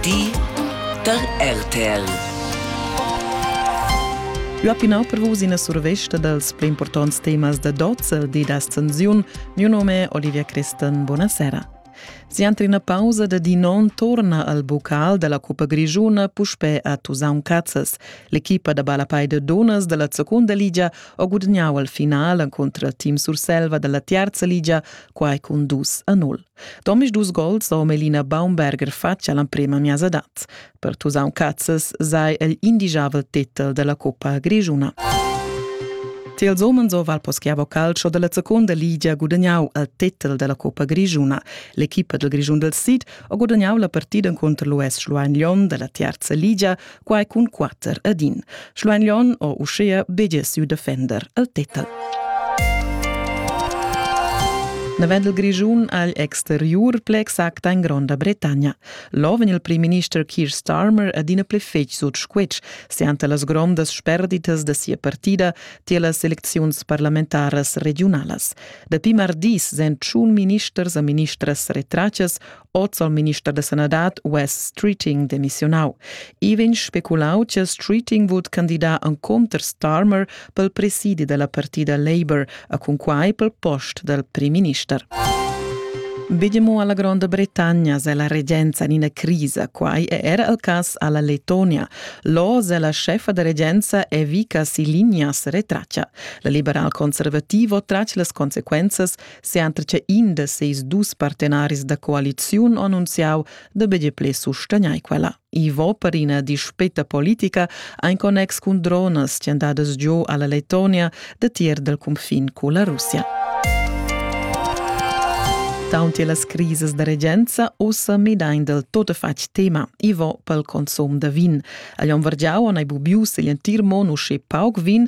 Di da RTL. Ua pinau per vus ina survesta dals pli importants temas da dozza e di d'ascensiun. Miu nome è Olivia Christen. Buonasera. Si entre una pausa de di non torna al bocal della Cuppa Grigiuna puspè a Tusaun Cazzas. L'equipa da balapai de Donas della Secunda Liga ho gudagnau al finale contro il team Surselva della Terza Liga, quai cun dus a 0. Domisdus gols ho Melina Baumberger fatg all'emprema miasadat. Per Tusaun Cazzes sei el indigiavel titel della Coppa Grischuna. Tiels homens ho Valposchiavo Calcio della seconda ligia gudagnau il titel della Coppa Grischuna. L'equipa del Grischun del Sid ha gudagnau la partida contro l'US Schluein Lyon della terza ligia quai cun quatter ed in. Schluein o uschea bedia siu defender el tetal. Navendel Grischun agl exteriur ple exacta in Gronda Bretagna. Loven il primminister Keir Starmer adina ple fetg sut squetsch, se ante las grondas sperditas de sia partida tie las elecziuns parlamentaras regionalas. Dapi mardis sen tschun ministers a ministras retrachas oz al minister da sanadad Wes Streeting demissionau. I vegn speculau che Streeting vul candidar en counter Starmer pel presidi della partida Labour a cunquai pel post del primminister. Vediamo alla Gronda Bretagna se la regenza in una crisa, quai è era il cas alla Letonia. Lo se la chefa da regenza è Vika Silinias retraccia. La liberal conservativo trace las consequences Sempre che in de seis dus partenaris da coaliziun annunziau da bege ple sustagnai quella. Ivo per ina dispeta politica ein connex cun dronas cendadas giu alla Letonia da tier del confin culla Russia. Taunti las crises da regenza ussa midain del totefatg tema Ivo pel consum da vin. Agli on vargiau an ei bubius igl entir mon usci pauc vin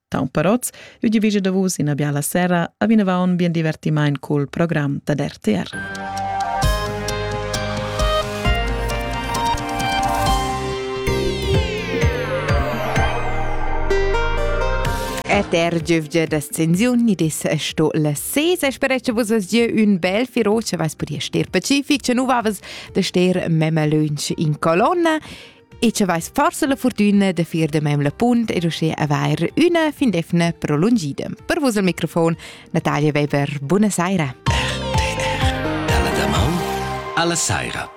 Taunt per oz, eu divigia da vus ina biala sera a vinavant bien divertimaint cul program da RTR. Et er giövgia da scensiun ni des sto la sesa spera che vus vas gieu un bel firo che vais podia ster pacific che nu vavas da ster memma lunch in colonna E ce vais forse la fortuna de fir de mem la punt e riuscir a vair una fin defna prolungida. Per vos al microfon, Natalia Weber, buona saira. Per TR, dalla Daman alla saira.